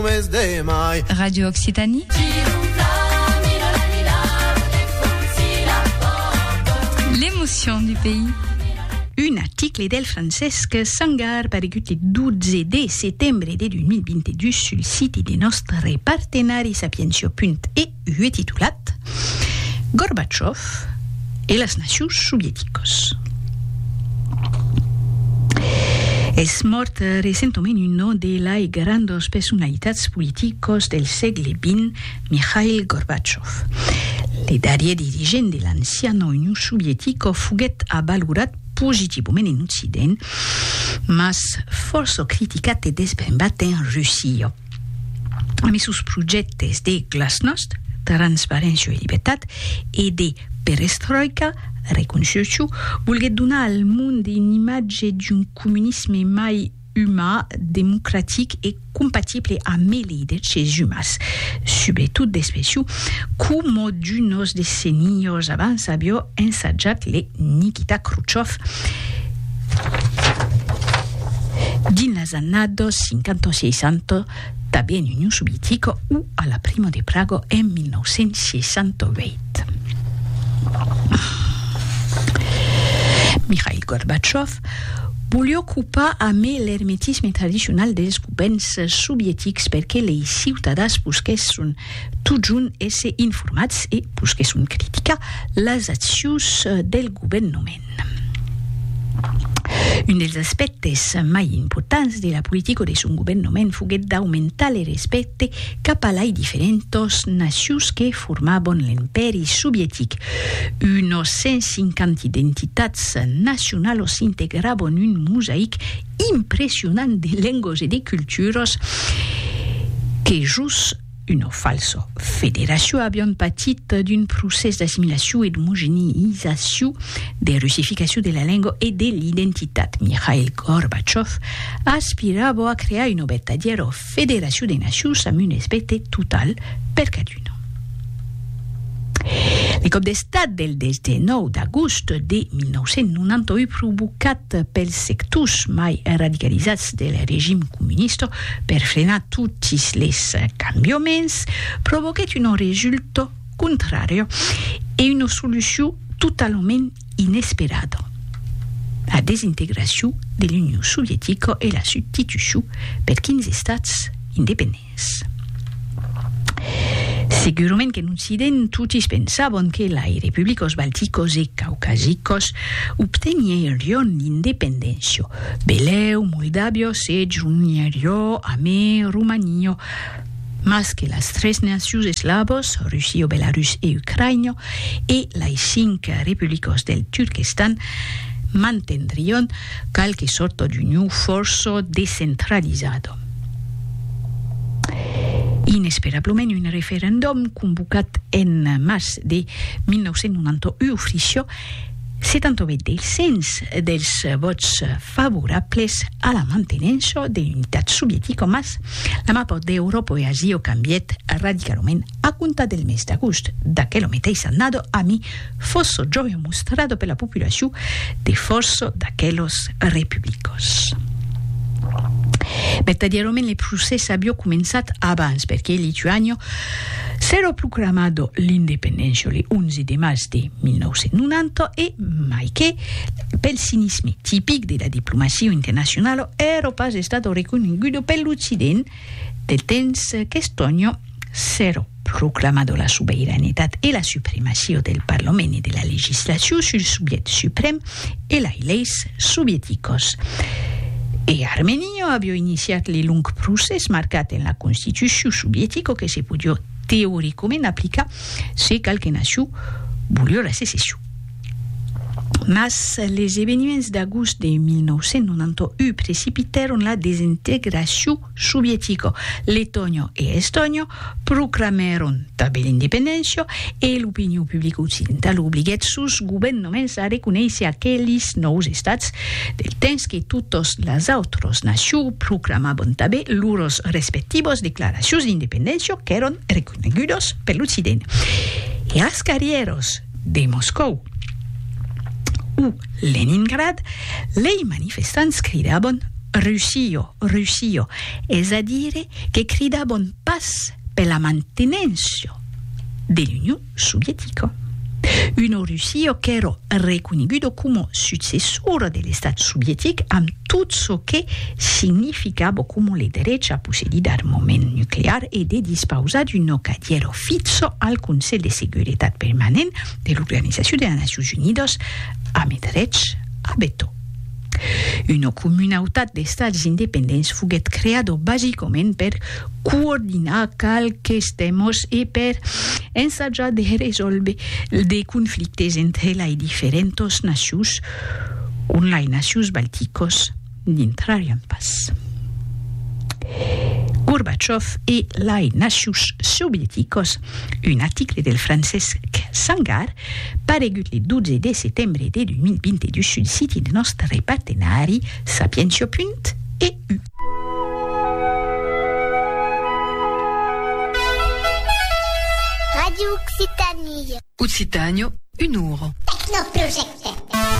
mes de mai. Radio Occitanie. L'emotion du pays. Un article del Francesc Sangar paregut le 12 de setembre de 2022 sul site de nòstre partenari sapientia.e ue titulat Gorbatchov e las nacius sovieticos. Es mòrt recentament uno de lai grandos personalitats politicos del sègle vint, Mikhail Gorbatchov. Le darrier dirigent de l'anciana Union sovietico foguèt avalorat positivament en Occident, mas fòrça criticat e desbrembat en Russia. Ami sos projèctes de glasnost, transparéncia e libertat e de perestroika, reconstrucciu, volguèt donar al monde un imatge d'un comunisme mai umà, democratic e compatible amb es liderches umas, subretot d'Especiu, coma d'unos decenios abans avió ensajat le Nikita Khrouchov. Dins las annados 50 o 60, tanben en Union Sovietica o a la Primo de Praga en 1968. Mikhail Gorbachev voliá ocupar amé l'ermetisme tradicional dels govèrns sovietics perque lei ciutadans busquèsson totjorn èsser informats e, pus que son critica, las accions del governoment. Un dels aspèctes mai importants de la politica de son governoment foguèt d'aumentar le respècte cap a lai diferentas nacions que formavan l'Empèri Sovietic. Unas 150 identitats nacionalas integravan un mosaic impressionant de lengos e de culturas que jos una falsa federacion avián patit d'un procès d'assimilacion e d'omogenizacion, de russificacion de la lenga e de l'identitat. Mikhail Gorbachev aspirava a crear una vertadièra Federacion de Nacions amb un respècte total per caduna. Lo còp d'estat del 19 d'agost de 1991 provocat pels sectors mai radicalizats del regim comunista per frenar totis les cambiaments provoquèt un resultat contrari e una solucion totalament inesperada, la desintegracion de l'Union Sovietica e la substitucion per 15 estats independents. Segurament qu'en Occident totis pensavan que lai republicas balticas e caucasicas obtenirián l'independéncia, belèu Moldàvia se jonheriá amé Romania, mas que las tres nacius eslavos, Rusio, Belarus e Ucraïna, e lei cinc republicos del Turquestan, mantendrion qualque sorta d'uniu fòrça descentralizada. Inesperablament, un referendum convocat en març de 1991 ofriciá 78 del cens dels vòts favorables a la mantenença de l'unitat sovietica, mas la mapa d'Euròpa e Asia cambièt radicalament a comptar del mes d'agost d'aquela meteissa annada, ami fòrça jòia mostrada per la populacion de fòrça d'aquelas republicas. Vertadièrament le procès aviá començat abans, perque Lituània s'èra proclamada l'independéncia le 11 de març de. 1990 e mai que, pel cinisme tipic de la diplomacia internacionala, èra pas estada reconeguda per l'Occident del temps qu'Estònia s'èra proclamada la sobeiranetat e la supremacia del Parlament e de la legislacion sul subjèct suprèm e lei leis sovieticas. E Armènia aviá iniciat le long procès marcat en la constitucion sovietica que se podiá teoricament aplicar Se cal que Nassau volió la secession. Mas les eveniments d'agost de 1991 precipitèron la desintegracion sovietica. Letònia e Estònia proclamèron tanben l'independéncia e l'opinion publica occidentala obliguèt sos governaments a reconéisser aqueles nòus estats, del temps que totas las autras nacions proclamavan tanben lors respectivas declaracions d'independéncia qu'èran Conegudos per l'Occident. E als carrieròs de Moscòu o Leningrad, lei manifestants cridabon Russio, Russio, es a dire que cridabon pas per la mantenéncia de l'Union Sovietica. Uno Russio qu'èra reconegudo coma successor de l'Estat Sovietic amb tot çò que significa bo coma le derech a possedir d'armament nuclear e de dispausar d'un nocadiero fitzo al Conselh de Seguretat Permanent de l'Organizacion de las Nacions Unidas amb eth derech a vetò. Una comunautat d'estats independents foguèt creada basicament per coordinar qualques tèmas e per ensajar de resòlver de conflictes entre lei diferentas nacions on lai nacius balticos n'intrarián pas. Gorbachev e lai nacius sovieticos, un aticle del Francesc Sangar paregut le 12 de setembre de 2022 sul siti de nòstre partenari sapientia.eu. Radio Occitanie. Occitània, un oro. Tecnoprojecte.